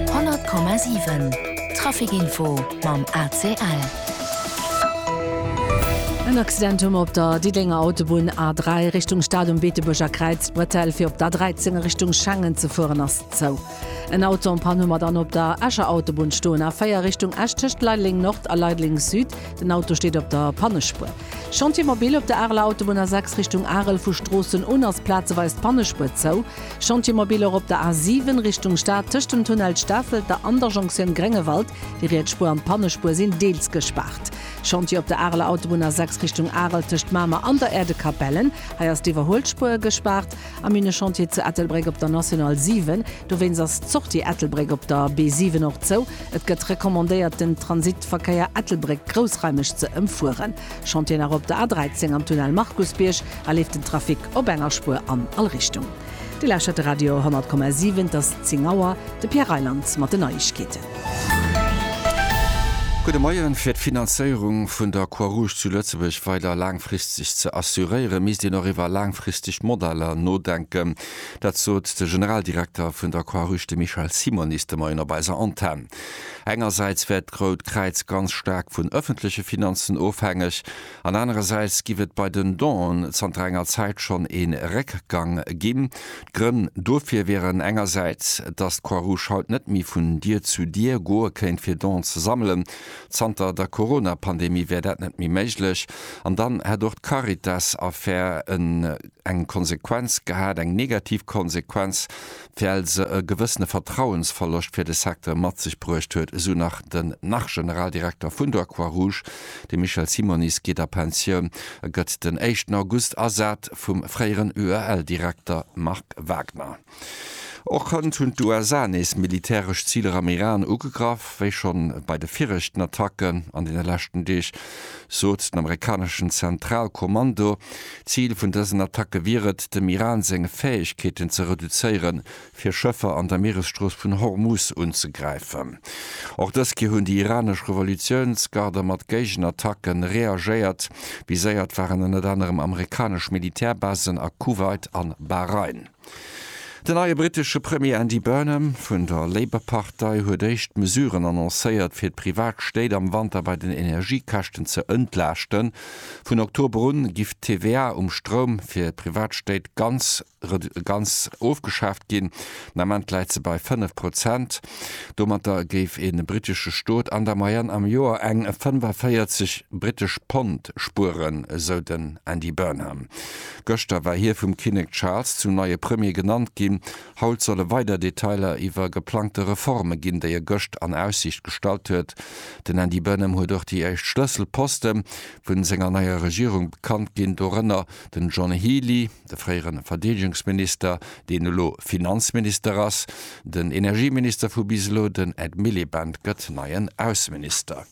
100,7 Trafic Info mam ACL. En Accident hu mer op der Diddénger Autobunn A3 Richtung Stad um Beetebuerger Kräiz. D'Bretelle fir op d'A13 a Richtung Schengen ze fueren ass zou. En Auto en Panne hu mer dann op der Escher Autobunn stoen. A4 Richtung Esch tëscht Leideleng Nord a Leideleng Süd. Den Auto steet op der Pannespuer. Chantier mobil op der Areler Autobunn A6 Richtung Arel, vu Stroossen un ass plazeweis d'Pannespuer zou. Chantiermobiler op der A7 Richtung Stad tëscht dem Tunnel Stafelter an der Jonktioun Gréngewald. Déi riets Spuer an d'Pannespuer sinn deels gespaart. Chantier op der Areler Autobunn A6 Richtung Arel tëscht Mamer an der Äerdekapellen. Hei ass d'Iwwerhuelspuer gespaart. A Minechantier zu Ettelbréck op der National 7. Dowéinst ass d'Sortie Ettelbréck op der B7 och zou. Et gëtt recommandéiert den Transitverkéier Ettelbréck-Groussreimech ze ëmfueren. Schont Dir nach op der A13 am Tunnel Markusbierg, a leeft den Trafic op enger Spuer an all Richtung. Dir lauschtert de Radio 10,7, et ass 10 Auer, de Pierre Reyland mat den Neiegkeeten. Gudde Moien. Fir d'Finanzéierung vun der Croix Rouge zu Lëtzebuerg weider laangfristeg ze assuréiere misst een och iwwer laangfristeg Modeller nodenken. Dat sot de Generaldirekter vun der Croix Rouge, de Michel Simonis, de Moien op eiser Antenn. Engersäits wär d'Rout Kräiz ganz staark vun ëffentleche Finanzen ofhängeg an anerersäits giff et bei den Donen zanter enger Zäit schonn ee Réckgang ginn. D'Grënn dofir wieren engersäits, dass d'Croix-Rouge haut net méi vun Dier zu Dier goe kéint fir Donen ze sammelen, zanter der Corona-Pandemie wär dat net méi méiglech, an dann hätt och d'Caritas-Affär eng Konsequenz gehat, eng negativ Konsequenz, well se e gewëssene Vertrauensverloscht fir de Secteur mat sech bruecht huet, esou nach den Nach-Generaldirekter vun der Croix-Rouge. De Michel Simonis geet a Pensioun a gëtt den éischten August ersat vum fréieren UEL-Direkter Marc Wagner. Och hënt hunn d'USA nees militäresch Ziler am Iran ugegraff. Wéi schonn bei de viregten Attacken an deene leschten Deeg, sot den amerikaneschen Zentralkommando, Zil vun dësen Attacke wier et, dem Iran seng Fäegkeeten ze reduzéieren, fir Schëffer an der Mieresstrooss vun Hormus unzegräifen. Och dës Kéier hunn déi iranesch Revolutiounsgarder mat Géigenattacke reagéiert. Viséiert waren ënnert anerem amerikanesch Militärbasen a Kuwait an Bahrain. Den neie brittesche Premier Andy Burnham vun der Labour-Partei huet éischt Mesuren annoncéiert, fir d'Privatstéit am Wanter bei den Energiekäschten ze entlaaschten. Vun Oktober un giff d'TVA um Stroum fir d'Privatstéit ganz ganz ofgeschaaft ginn. Den Ament läit se bei 5 Prozent. Domatter géif e brittesche Stot an der Moyenne am Joer eng 45 brittesch Pond spueren, esou den Andy Burnham. Gëschter war hie vum Kinnek Charles zum neie Premier genannt ginn. Haut solle weider Detailer iwwer geplangte Reforme ginn, déi e gëscht an Aussiicht gestallt huet. Den Andy Burnham huet och déi éischt Schlësselposte vun senger neier Regierung bekannt ginn, dorënner den John Healey, de fréiere Verdeedegungsminister, deen elo Finanzminister ass. Den Energieminister vu bis elo, den Ed Miliband, gëtt neien Ausseminister.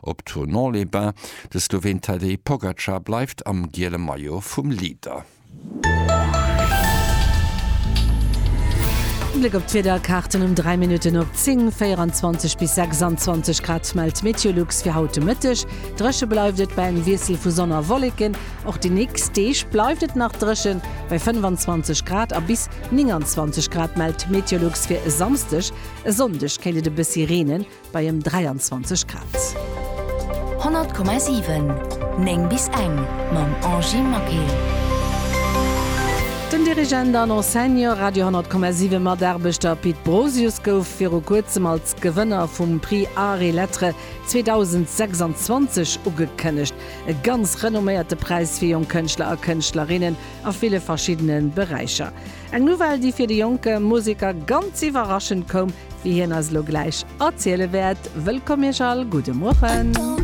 Op Thonon-les-Bains, de Sloween Tadej Pogacar bleift am giele Maillot vum Leader. En Bléck op d'Wiederkaarten um 3 Minutten op 10, 24 bis 26 Grad mellt Meteolux fir haut de Mëtteg. Dréche bleift et bei engem Wiessel vu Sonn a Wolleken. Och déi nächst Deeg bleift et nach dréchen, bei 25 Grad a bis 29 Grad mellt Meteolux fir e Samsdeg. E Sonndeg kéint et e bëssi reenen. bei ëm 23 Grad. 100,7 9 bis eng mam Angie Maquet. Den Dirigent an Enseignant, Radio 10,7 Mataarbechter Pit Brosius gouf viru kuerzem als Gewënner vum Prix Arts et Lettres 2026 ugekënnegt. E ganz renomméierte Präis fir jonk Kënschtler a Kënschtlerinnen a ville verschiddene Beräicher. Eng Nouvelle, déi fir de jonke Museker ganz iwwerraschend koum, wéi hien eis elo gläich erziele wäert. Wëllkomm Iech all, gudde Mueren.